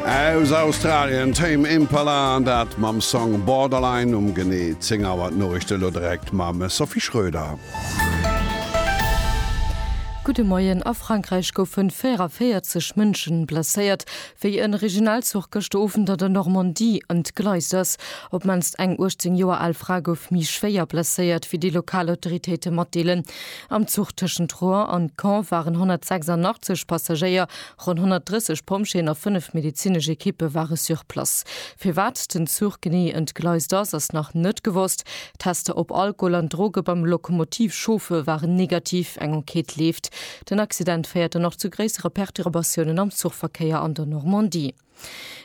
Aus Australien Tame Impala an dat mam Song Borderline um genee 10 Auer. D'Noriichte elo direkt mam Sophie Schröder. Gudde Moien, A Frankräich goufe 44 Mënsche blesséiert, wéi e Regionalzuch gëschter Owend an der Normandie ëm d'Gleis ass. Op d'mannst eng 18 Joer al Fra gouf méi schwéier blesséiert, wéi déi lokal Autoritéite matdeelen. Am Zuch tëschent Rouen an Caen waren 186 Passagéier Ronn 130 Pompjeeën a fënnef medezinesch Ekippe ware sur place. Firwat den Zuch genee entgleist ass, ass nach net gewosst. Tester op Alkohol an Droge beim Lokomotivchauffer waren negativ. Eng Enquête leeft. Den Accident féiert dann och zu gréissere Perturbatiounen am Zuchverkéier an der Normandie.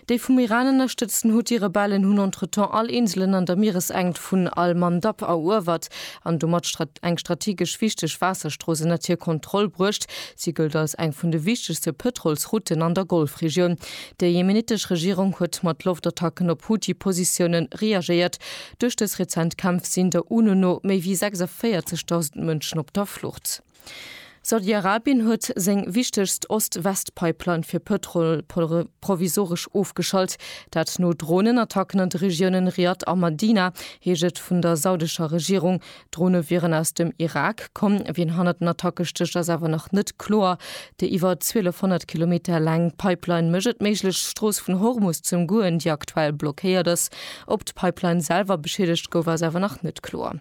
Déi vum Iran ënnerstëtzten Huthi-Rebellen hunn entretemps all Inselen an der Mieresenkt vun al-Mandab eruewert an domat eng strategesch wichteg Waasserstrooss ënnert hir Kontroll bruecht. Si gëllt als eng vun de wichtegste Pëtrolsrouten an der Golfregioun. Déi jemenitesch Regierung huet mat Loftattacken op Huthi-Positioune reagéiert. Duerch dës rezent Kämpf sinn der UNO no méi wéi 46.000 Mënschen op der Flucht. Saudi-Arabien huet seng wichtegst Ost-West-Pipeline fir Pëtrol provisoresch ofgeschalt. Dat no Dronenattacken an de Regiounen Riad a Madina, heescht et vun der saudescher Regierung. D'Drone wieren aus dem Irak komm. Wien hannert den Attacke stécht, ass awer nach net kloer. Déi iwwer 1.200 Kilometer laang Pipeline mécht et méiglech, d'Strooss vun Hormus ze ëmgoen, déi aktuell blockéiert ass. Ob d'Pipeline selwer beschiedegt gouf, ass awer nach net kloer.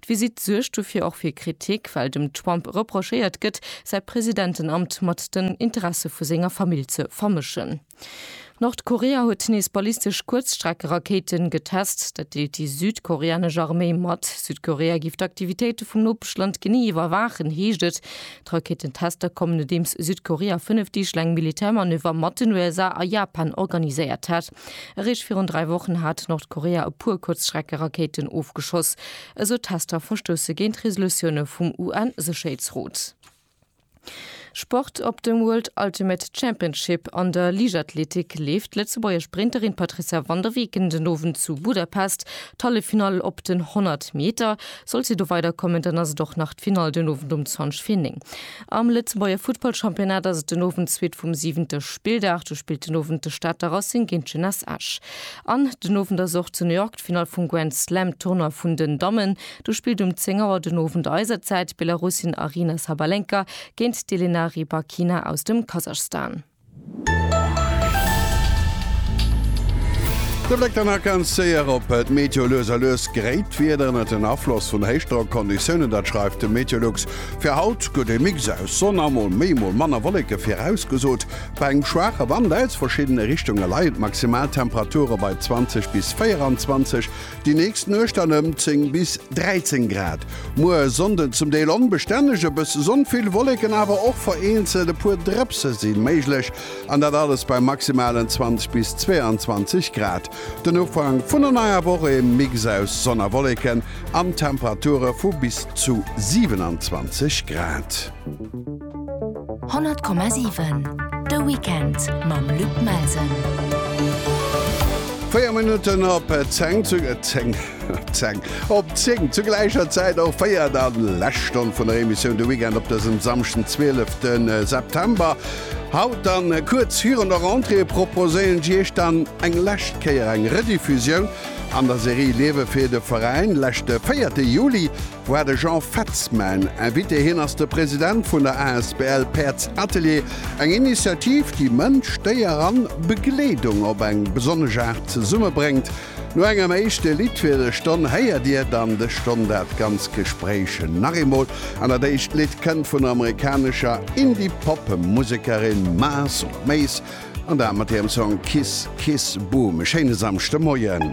D'Visitt suergt dofir och fir Kritik, well dem Trump reprochéiert gëtt, säi Presidentenamt mat den Interesse vu senger Famill ze vermëschen. Nordkorea huet nees ballistesch Kuerzstreckerakéiten getest. Dat deelt déi südkoreanesch Arméi mat. Südkorea géif d'Aktivitéite vum Nopeschland genee iwwerwaachen, heescht et. D'Rakéitentester kommen, nodeems Südkorea fënnef Deeg laang Militärmanöver mat den USA a Japan organiséiert hat. Eréischt virun dräi Wochen hat Nordkorea e puer Kuerzschreckerakéiten ofgeschoss. Esou Tester verstousse géint Resolutioune vum UN-Sécherheetsrot. Sport, Op dem World Ultimate Championship an der Liichtathletik leeft d'Lëtzebuerger Sprinterin Patrizia van der Weken den Owend zu Budapest d'Halleffinall. Op den 100 Meter, sollt si do weiderkommen, dann ass et och nach d'Finall den Owend um 20 vir 9. Am Lëtzebuerger Futtballchampionnat ass et den Owend d'Suite vum siwente Spilldag. Do spillt den Owend de Stater Racing géint d'Jeunesse Esch. An den Owend ass och zu New York d'Finall vum Grand Slam Tournoi vun den Dammen. Do spillt um 10 Auer den Owend eiser Zäit d'Belarusin Aryna Sabalenka géint d'Elena Rybakina aus dem Kasachstan. De Bléck dann nach ganz séier op d'Meteo. Lues a lues gréit d'Wieder ënnert den Afloss vun Héichdrockconditiounen, dat schreift de Meteolux. Fir haut gëtt e Mix aus Sonn a mol méi mol manner Wolleke virausgesot. Bei engem schwaache Wand aus verschiddene Richtunge leien d'Maximaltemperature bei 20 bis 24. Déi nächst Nuecht dann ëm 10 bis 13 Grad. Muer Sonnden zum Deel onbestänneg, e bësse Sonn, vill Wolleken, awer och vereenzelt e puer Drëpse si méiglech, an dat alles bei maximalen 20 bis 22 Grad. Den Ufank vun der neier Woch e Mix aus Sonn a Wolleken an Temperature vu bis zu 27 Grad. 100,7 De Weekend mam Luc Melsen. Véier Minutten op 10 zu 10 10 op 10 zu gläicher Zäit och féier der den Lächstonn vun der Emissioun de Weekend op dësem Samschden 12. Äh, September. Haut dann äh, kuerz virun der Rentrée proposéieren Iech dann eng läscht Kéier eng Rediffusioun an der Serie Liewe fir de Veräin läschte 4. Juli war de Jean Fetz mäin Invité. Hien ass de President vun der asbl Paerds Atelier, eng Initiativ, déi Mënsch, Déier an Begleedung op eng besonnesch Aart zesummebréngt. No engem éischte Lidd fir de Stonn héiert dir dann de Stonn dat ganz Gespréich nach eemol an dat éischt Lidd kënnt vun der amerikanescher Indie-Pop Musekerin Mars op Maze an dat mat hirem Song Kiss Kiss Boom. E schéine Samschdemoien.